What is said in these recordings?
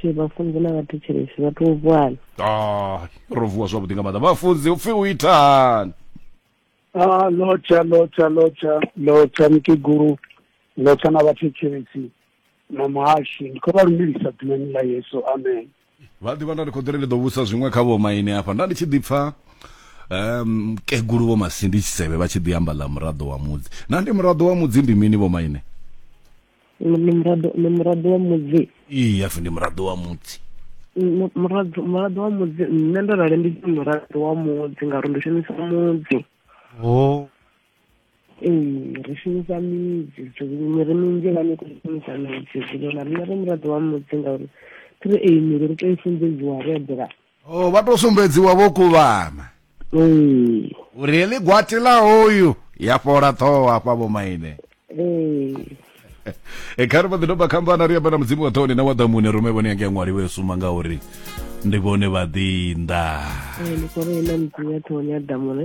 she vhafunzi na vhathetshelesi vha tou vuana ah ro vuwa zwavhuḓi nga maanḓa vhafunzi upfi u itani Ah, lotsha lotsha lotsha lotsha mukegulu lotsha na vhathetshelesi na muhashi ndi khou vha lumelisa ḓinani ḽa yesu amen vha ḓivha nda ndi khou ḓiri ndi ḓo vhusa zwiṅwe kha vho maine hafha nda ndi tshi ḓi pfa um kegulu vho masindi tshisevhe vha tshi ḓi amba ḽa muraḓo wa mudzi na ndi muraḓo wa mudzi ndi mini vho maine ndi muraḓo ndi muraḓo wa mudzi ii hafi ndi muraḓo wa mudzi muraḓo muraḓo wa mudzi nṋe ndo rali ndi muraḓo wa mudzi ngauri ndi shumisa mudzi o oh. ee ri shumisa midzi miri minzhi vhane khou shumisa midzi zwilona rina ri muraḓo wa mudzi ngauri thi ri eyi miri ri tou i sumbedziwa ri eḓela o oh, vha tou sumbedziwa vho kuvhana ee uri heḽi gwati la hoyu ya fhola ṱhoho hafha vho maine ee e kha ri vha ḓi doba khambana ri amba na mudzimu wa ṱhoni na wa ḓamune rume vhone yange ya ṅwaliwe yo suma ngauri ndi vhone vhaḓinḓa ee ndi khou ri ena mudzimu wa ṱhoni ya ḓamune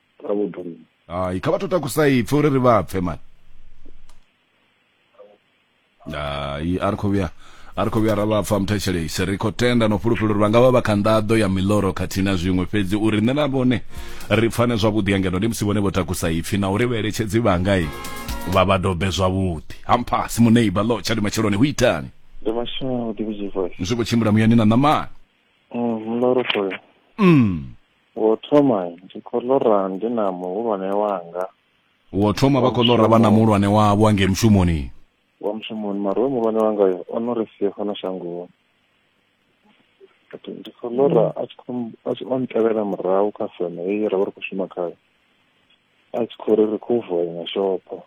ra vhudoni hayi kha vha to takusa ipfhi uri ri vha pfe mani hayi a ri khou vhuya a ri khou vhuya ra vha pfa muthetshelesi ri khou tenda no fhulufhela uri vha nga vha vha kha nḓaḓo ya miloro khathihi na zwiṅwe fhedzi uri nṋe na vhone ri pfane zwavhuḓi angeno ndi musi vhone vho takusa ipfhi na uri vhaeletshedzi vhangai vha vha dobe zwavhuḓi hamphasi muneiba lo tshadi matsheloni hu itani ndi mashaudi vhudzi voice zwi khou tshimbila muyani na ṋamani mm ndo ro khoya mm Wo thoma ndi khou ḽora ndi na muhulwane wanga. Wo thoma vha khou ḽora vha na muhulwane wavho a ngei mushumoni. Wa mushumoni mara hoyo muhulwane wanga yo o no ri sia fhano shangoni. Ndi khou ḽora a tshi khou a tshi o ntevhela murahu kha feme heyi ra vha ri khou shuma khayo. A tshi khou ri ri khou vuwa iṅwe shopho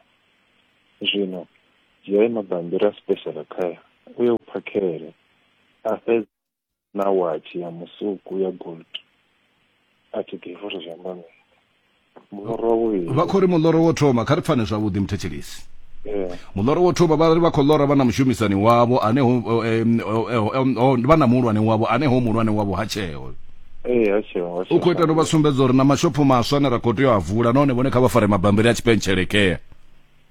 zwino dzhiai mabambiri a special care uye u phakhele a fhedza. na watshi ya musuku ya gold a thi ḓivhi uri zwi amba mini muḽoro wa vhuvhili vha khou ri muḽoro wo thoma kha ri pfane zwavhuḓi muthetshelisi eh, muḽoro wo thoma vha ri vha khou ḽora vha na mushumisani wavho ane ho eh, em, o- eh, o- em, o- vha na muhulwane wavho ane ho muhulwane wavho ha tsheo eh, ha tsheo ha u khou ita tsheo no vha sumbedza uri na mashopho maswa ane ra khou tea u a vula nahone vhone kha vha fare mabambiri a tshipentshelekhea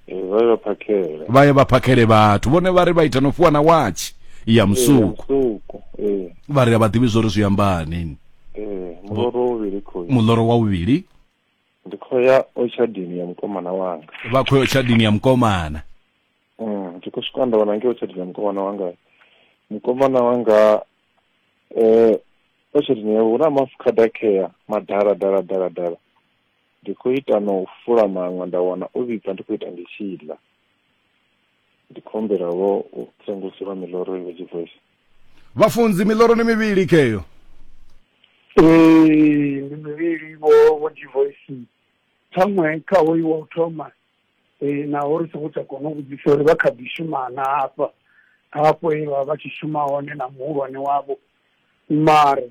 Eh, vha ye vha phakhele vha ye vha phakhele vhathu vhone vha ri vha ita no fhiwa na watshi ya musuku musuku ee vha ri a vha ḓivhi zwo ri zwi ambani ee muloro wo vhili khou muḽoro wa vhuvhili ndi khou ya ochadini ya mukomana wanga vha khou ya tshadini ya mukomana Mm, ndi khou swika nda wana ngeo ochadini ya mukomana wanga mukomana wanga eh ochadini yawe hu na mafukhada khea madala dala dala dala Ndi khou ita na u fula maṅwe nda wana o vhibva ndi khou ita ndi tshi ḽa. Ndi khou humbela vho u senguluseliwa miḽoro i vhe dzivoice. Vhafunzi, Miḽoro ndi mivhili ke eyo? Ee, ndi mivhili vho vho dzivoice. Ṱhaṅwe kha hoyu wa u thoma eh, naho ri songo tsha kona u vhudzisa uri vha kha ḓi shuma na hafha hafho he vha vha tshi shuma hone na muhulwane wavho mara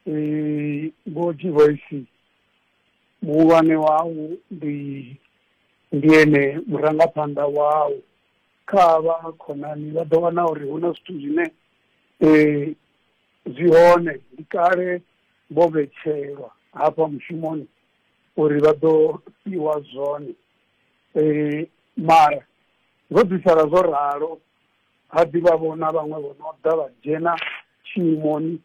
eh, vho dzivoice vhuhulwane hau ndi ndi ene murangaphanḓa wau, kha havha khonani vha ḓo wana uri hu na zwithu zwine zwi hone ndi kale vho vhetshelwa hafha mushumoni uri vha ḓo fhiwa zwone, mara zwo ḓi sala zwo ralo ha ḓivha vho na vhaṅwe vho no ḓa vha dzhena tshimoni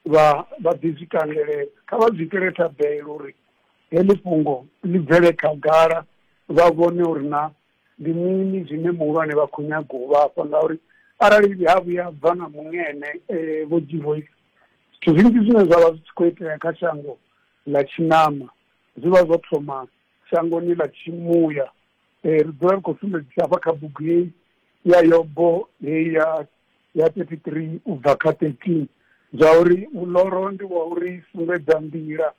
vha vha ḓi zwi kangeledza. Kha vha zwi itele thabelo uri heḽi fhungo ḽi bvele khagala, vha vhone uri naa ndi mini zwine muhulwane vha khou nyaga u vha fha. Ngauri arali ha vhuya ha bva na muṅwe ene Vho Givoisa, zwithu zwinzhi zwine zwa vha zwi tshi khou itea kha shango ḽa tshiṋama zwi vha zwo thoma shangoni ḽa tshimuya. Ri dzula ri khou sumbedzisa hafha kha bugu heyi ya Yobo heyi ya. ya 33 u bva kha 13 zwa uri muloro ndi wa u ri sumbedza nḓila,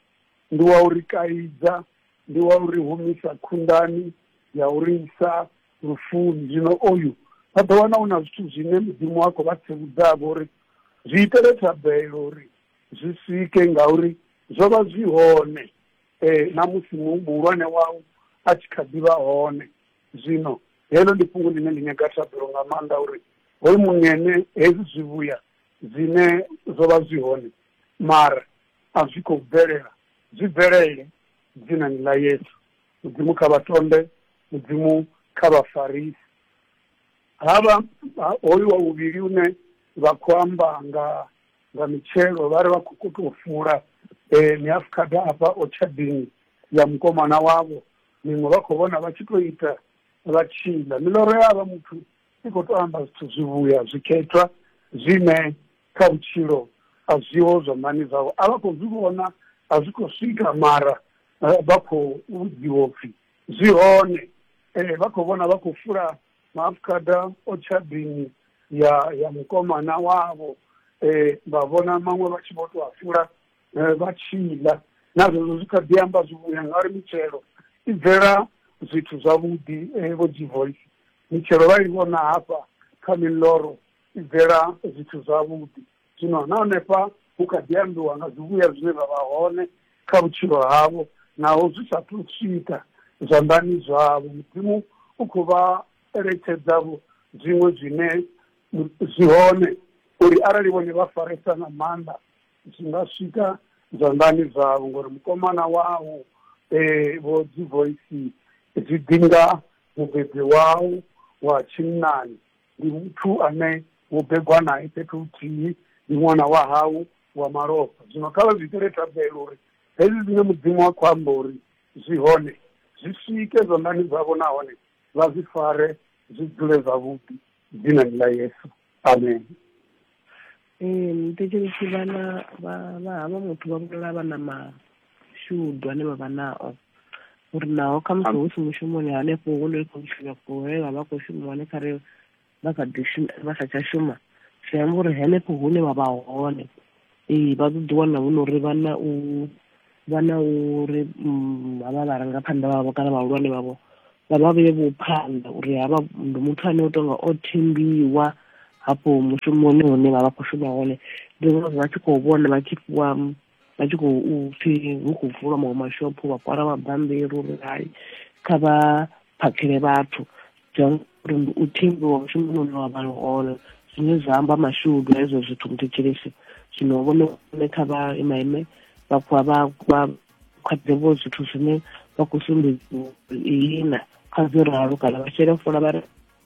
ndi wa u ri kaidza, ndi wa u ri humisa khunḓani ya u ri isa lufuni. Zwino oyu vha ḓo wana hu na zwithu zwine Mudzimu a khou vha tsivhudzavho uri zwi itele thabelo uri zwi swike ngauri zwo vha zwi hone na musi muhulwane wau a tshi kha ḓi vha hone. Zwino Heḽo ndi fhungo ḽine ḽi nyaga thabelo nga maanḓa uri hoyu muṅene hezwi zwivhuya zwine zwo vha zwi hone mara a zwi khou bvelela zwi bvelele Dzinani ḽa Yesu. Mudzimu kha vha tonde, Mudzimu kha vha farise. Havha hoyu wa vhuvhili une vha khou amba nga nga mitshelo vhari vha kho tou fula mihafukhada afha otshadini ya mukomana wavho Miṅwe vha khou vhona vha tshi tou ita vha tshi ḽa. Miḽoro ya havha muthu i khou tou amba zwithu zwivhuya zwikhethwa zwine kha vhutshilo a zwiho zwanḓani zwavho. A vha khou zwi vhona, a zwi khou swika mara vha khou vhudziwa u pfi zwi hone. Vha khou vhona vha khou fula maafukhada o tshadini ya ya mukomana wavho, vha vhona maṅwe vha tshi vho tou a fula. eh, vha tshi ḽa na zwezwo zwi kha ḓi amba zwi vhuya ngauri mitshelo i bvela zwithu zwavhuḓi eh, vho G-Voice mitshelo vha i vhona hafha kha miḽoro i bvela zwithu zwavhuḓi zwino na hanefha hu kha ḓi ambiwa nga zwivhuya zwine zwa vha hone kha vhutshilo havho naho zwi sa thu swika zwanḓani zwavho mudzimu u khou vha eletshedzavho zwiṅwe zwine mu- zwi hone uri arali vhone vha faresa nga maanḓa zwi nga swika zwanḓani zwavho ngori mukomana wau eh, vho dzi voice zwi ḓinga mubebi wau wa tshinnani ndi muthu ane wo begwa nae fhethu huthihi ndi ṅwana wa hau wa malofha zwino kha vha zwi itele thabelo uri hezwi zwine mudzimu wa khou amba uri zwi hone zwi swike zwanḓani zwavho nahone vha zwi fare zwi dzule zwavhuḓi Dzinani ḽa Yesu. Amen. Ee, muthetshelesi vhana vha vha havha muthu vha vhulala vha na mashudu ane vha vha nao uri naho khamusi hu si mushumoni hanefho hune ri khou shuma kule vha vha khou shuma hone kha re vha kha ḓi vha sa tsha shuma zwi amba uri henefho hune vha vha hone ee vha ḓo ḓi wana hu nori vha na u vha na uri mm, havha vharangaphanḓa vhavho kana vhahulwane vhavho vha vha vheye vho phanḓa uri havha ndi muthu ane u tonga o thembiwa hafho mushumoni hune vha vha khou shuma hone ndi ngazwo vha tshi khou vhona vha tshi fhiwa vha tshi khou pfhi hu khou vulwa maṅwe mashopho vha kwala mabambiri uri hai kha vha phakhele vhathu John Murumbi u thimbiwa mushumoni une wa vha liholo zwine zwa amba mashudu hezwo zwithu muthetshelesi zwino vhone vhone kha vha imaime vhakhuwa vha vha khwaḓevho zwithu zwine vha khou sumbedziwa ihina kha zwo ralo kana vha shele fola vha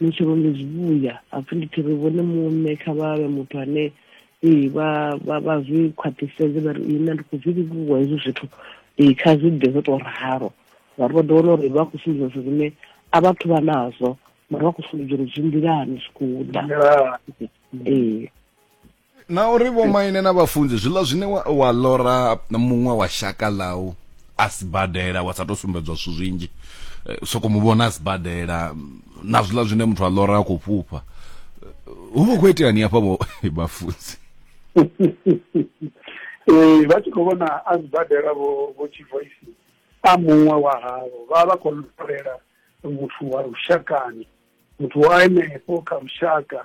ni tshi vhombe zwivhuya hapfi ndi tshi ri vhone muṋe kha vha vhe muthu ane ee vha vha vha zwi khwaṱhisedze vha ri nṋe ndi khou zwi livhuwa hezwi zwithu ee kha zwi ḓe zwo tou ralo ngauri vha ḓo wana uri vha khou sumbedza zwithu zwine a vhathu vha nazwo mara vha khou sumbedza uri zwi nḓilani zwi khou ḓa ee na uri vho maine na vhafunzi zwiḽa zwine wa, wa lora muṅwe wa shaka ḽau a sibadela wa sa to sumbedzwa zwithu zwinzhi eh, soko mu vhona a sibadela na zwiḽa zwine muthu a lora a khou fhufha hu vha khou iteani hafha vho vhafunzi ee vha tshi khou vhona a sibadela vho vho tshivoisi a muṅwe wa havho vha vha khou lorela muthu wa lushakani muthu wa henefho kha lushaka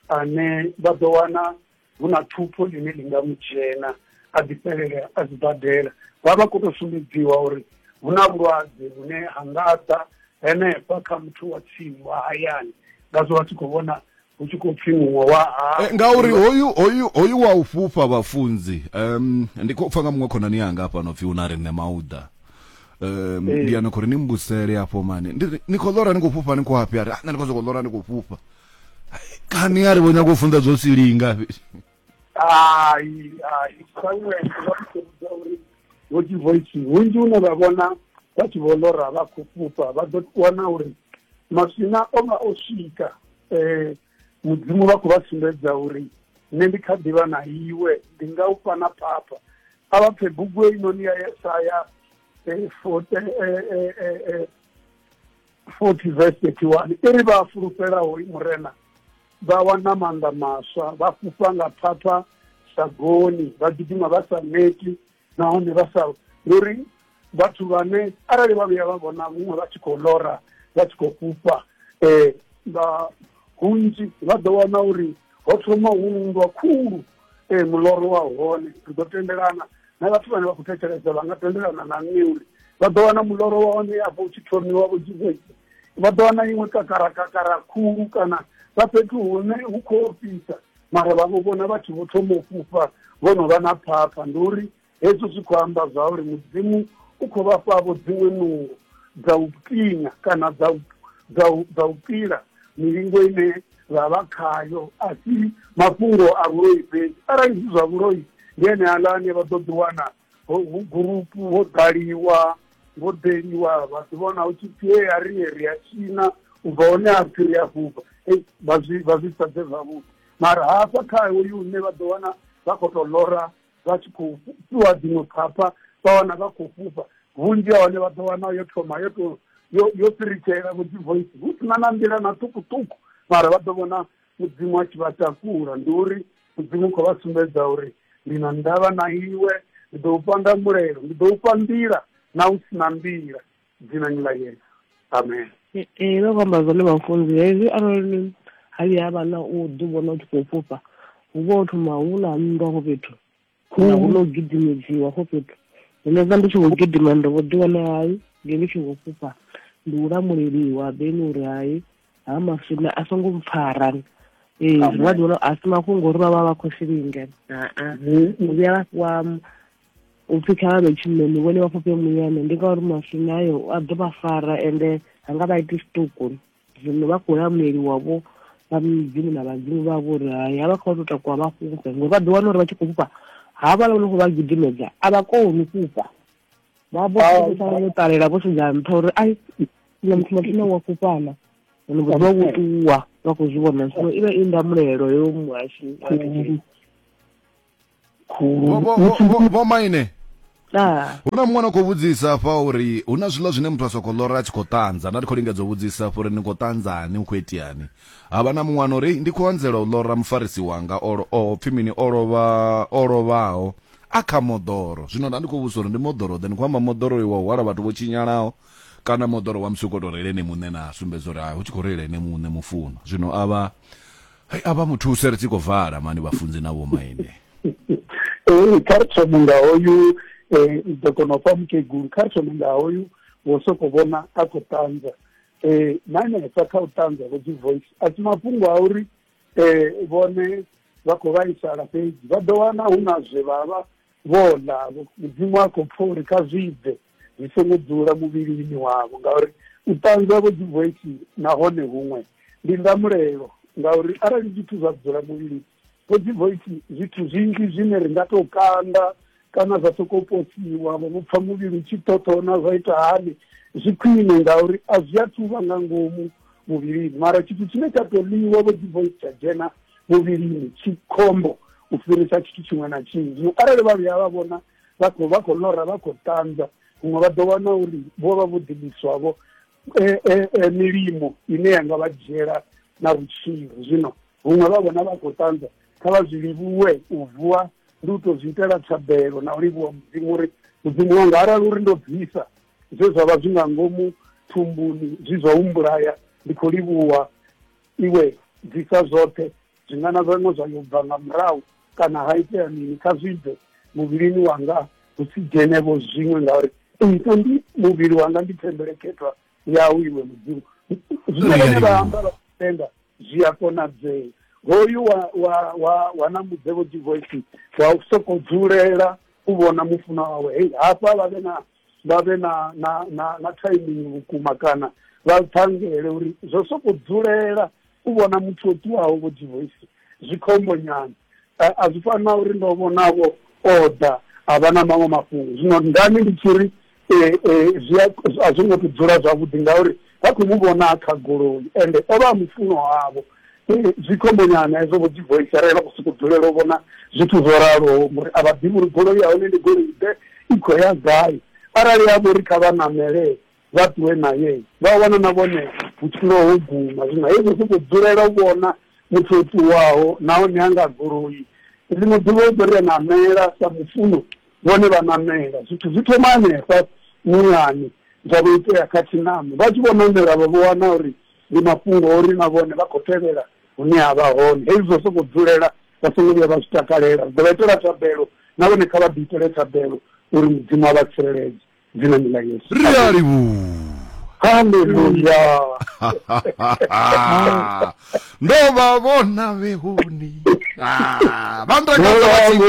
ane vha ḓo wana hu na thupho ḽine ḽi nga mu dzhena a ḓi fhelela a sibadela vha vha khou tou sumbedziwa uri hu na vhulwadze vhune ha nga ḓa henefha kha muthu wa tsini wa hayani ngazwo vha tshi khou vhona hu tshi khou pfi muṅwe wa hau Eh, ngauri hoyu hoyu hoyu wa u fhufha vhafunzi um, ndi khou pfa nga muṅwe khonani yanga hafhano pfi hu na riṋe mauda um Ee. ndi yana khou ri ni mbusele hafho mani Ndi ri, ni khou ḽora ni khou fhufha ni khou hafhi a ri "Ah, nṋe ndi khou sokou ḽora ni khou fhufha kani a ri vho nyaga u funza zwo silinga hai hai samuel vha tshi khou vhudza uri vho divoisi hunzhi une vha vhona vha tshi vho lora vha khou fhufha vha ḓo wana uri maswina o vha o swika um mudzimu vha khou vha sumbedza uri nṋe ndi kha ḓivha na iwe ndi nga u fha na phapha a vha pfe bugu einoni ya yesaya eh, eh, eh, forty verse thirty one i ri vha fulufhelaho murena vha wana maanḓa maswa vha fhufha nga phapha sagoni vha gidima vha sa neti nahone vha sa ndi uri vhathu vhane arali vha vhuya vha vhona vhuṅwe vha tshi khou lora vha tshi khou fhufha um vha hunzhi vha ḓo wana uri ho thoma hu nndwa khulu um muloro wa hone ri ḓo tendelana na vhathu vhane vha khou thetshelesa vha nga tendelana na nṋe uri vha ḓo wana muloro wa hone afho u tshi thomiwa vho jizesi vha ḓo wana iṅwe kakara kakara khulu kana vha fhethu hune hu khou ofhisa mara vha vho vhona vhathu vho thoma u fhufha vho no vha na phapha ndi uri hezwo zwi khou amba zwa uri mudzimu u khou vha fhavho dziṅwe nungo dza u tinya kana dza u dza u dza u pila milingo ine vha vha khayo a si mafhungo a vhuloi fhedzi arali zwi zwa vhuloi ndi ene aḽa ane vha ḓo ḓiwana ho hu gurupu ho ḓaliwa ho ḓeliwa vha ḓi vhona hu tshi pfi hea ri ye ri a tshina u bva hone ha pfi ri a fhufha ei vha zwi vha zwi sa bve zwavhuḓi mara hafha kha hoyu une vha ḓo wana vha khou tou lora vha tshi khou fhu- fhiwa dziṅwe phapha vha wana vha khou fhufha vhunzhi ha hone vha ḓo wana yo thoma yo tou yo yo fhiritshelela vho dzi voice hu si na na nḓila na ṱhukhuṱhukhu mara vha ḓo vhona mudzimu a tshi vha takula ndi uri mudzimu u khou vha sumbedza uri ndi na ndavha na iwe ndi ḓo u panga mulelo ndi ḓo u fha nḓila na u si na nḓila dzinani ḽa yesu amen ee no amba zwone vhafunzi hezwi arali ha vhuya ha vha na u ḓi vhona u tshi khou fhufha hu vha ho thoma hu na nndwa hafho fhethu kana hu no gidimedziwa hafho fhethu zwino vha ndi tshi khou gidima ndo vho ḓi wana hai ndi ndi tshi khou fhufha ndi u lamuleliwa beni uri hai ha maswina a songo mpfara ee zwi vha ḓiwana a si mafhungo uri vha vha vha khou silinge aa u vhuya vha fhiwa u pfhi kha vha vhe tshinnoni vhone vha fhufhe muyane ndi ngauri maswina ayo a ḓo vha fara ende ha nga vha iti tshiṱuku zwino vha khou lamueliwa vho vha midzimu na vhadzimu vha vho uri hai a vha khou tou takuwa vha fhufhe ngori vha ḓo wana uri vha tshi khou fhufha havha la no khou vha gidimedza a vha koni fhufha vha vho vho ṱalela vho sedza nṱha uri ai na muthu mathu na wa fhufhana ono vho vha vhuṱuwa vha khou zwi vhona zwino i vha i ndamulelo yo muhashi khulu vho maine hu na muṅwe na khou vhudzisa afha uri hu na zwiḽa zwine muthu a sokou lora a tshi khou ṱanza nda ndi khou lingedza u vhudzisa afha uri ni khou ṱanzani hu khou itiani ha vha na muṅwe ano uri ndi khou anzela u lora mufarisi wanga o pfhi mini o lovha o lovhaho a kha moḓoro zwino nda ndi khou vhudzisa uri ndi moḓoro ḓe ni khou amba moḓoro wa hwala vhathu vho tshinyalaho kana moḓoro wa musi u khou tou reile ene muṋe na sumbedza uri hu tshi khou reila ene muṋe mufuno zwino a vha Hai a vha mu thuse ri tshi khou vala mani vhafunzi na vhomaine. Eh kha ri thome nga hoyu eh ndi ḓo kona u fha mukegulu kha ri thome nga hoyu wo soko vhona a khou ṱanza eh na hanefha kha u ṱanza vho dzi voice a si mafhungo a uri eh vhone vha khou vhaisala fhedzi vha ḓo wana hu na zwe vha vha Vho ḽa, Mudzimu a khou pfa uri kha zwi bve, zwi songo dzula muvhilini wavho, ngauri u ṱanzwa vho dzi vweki nahone huṅwe ndi ndamulelo, ngauri arali zwithu zwa dzula muvhilini vho dzi vweki, zwithu zwinzhi zwine ri nga tou kanda kana zwa sokou posiwa, vho vho pfa muvhili u tshi ṱhoṱhona, zwa ita hani? Zwi khwine, ngauri a zwi athu vha nga ngomu muvhilini, mara tshithu tshine tsha tou ḽiwa vho dzi vweki tsha dzhena muvhilini tshi khombo u fhirisa tshithu tshiṅwe na tshiṅwe zwino arali vha vhuya vha vhona vha khou vha khou lora vha khou ṱanza huṅwe vha ḓo wana uri vho vha vho ḓiliswavho eh, eh, eh, milimo ine ya nga vha dzhiela na vhutshilo zwino huṅwe vha vhona vha khou ṱanza kha vha zwi livhuwe u vuwa ndi u tou zwi itela thabelo na u livhuwa mudzimu uri mudzimu wanga arali uri ndo bvisa zwe zwa vha zwi nga ngomu thumbuni zwi zwa humbulaya ndi khou livhuwa Iwe bvisa zwoṱhe zwingana zwaṋe zwa yo bva nga murahu, kana ha itea mini, kha zwi bve muvhilini wanga, hu si dzhene vho zwiṅwe, ngauri nṋe ndi, muvhili wanga ndi thembelekhethwa Yau, Iwe Mudzimu. Zwine vhone vha amba vha tshi tenda, zwi a konadzea. Hoyu wa, wa, wa, wa ṋambudzevho Jehoashi wa sokou dzulela u vhona mufunwa wawe, hei, hafha vha vhe na. vha vhe na na na na timing vhukuma kana vha ṱhangele uri zwo soko dzulela u vhona muthu o ṱuwaho vho divoisi zwi khombo nyana a zwi fani na uri ndo vhonavho oda a vha na maṅwe mafhungo zwino ndani ndi tshi ri zwi a zwo ngo to dzula zwavhuḓi ngauri vha khou mu vhona kha goloi ende o vha a mufuno wavho zwi khombonyana hezwo vho dzi voisa arali vha khou sokou dzulela u vhona zwithu zwo raloho ngori a vha ḓivhi uri goloi ya hone ndi goloi ḓe i khou ya gai arali ya vho ri kha vha namele vha ṱuwe naye vha wana na vhone vhutshilo ho guma zwino hezwo sokou dzulela u vhona muthu o ṱuwaho nahone a nga goloi ḽiṅwe ḓuvha u ḓo ri a namela sa mufuno vhone vha namela zwithu zwi thoma hanefha muyani zwa vho itea kha tshinamo vha tshi vho namela vha vho wana uri Ndi mafhungo a uri na vhone vha khou tevhela hune a vha hone. Hezwi zwa u sokou dzulela vha songo vhuya vha zwi takalela. Ri ḓo vha itela thabelo, na vhone kha vha ḓiitele thabelo uri Mudzimu a vha tsireledze. Dzinani ḽa Yesu. Ri a livhuha. Haleluya! Ndo vha vhona vhehoni. Vha ntakadza vha tshi.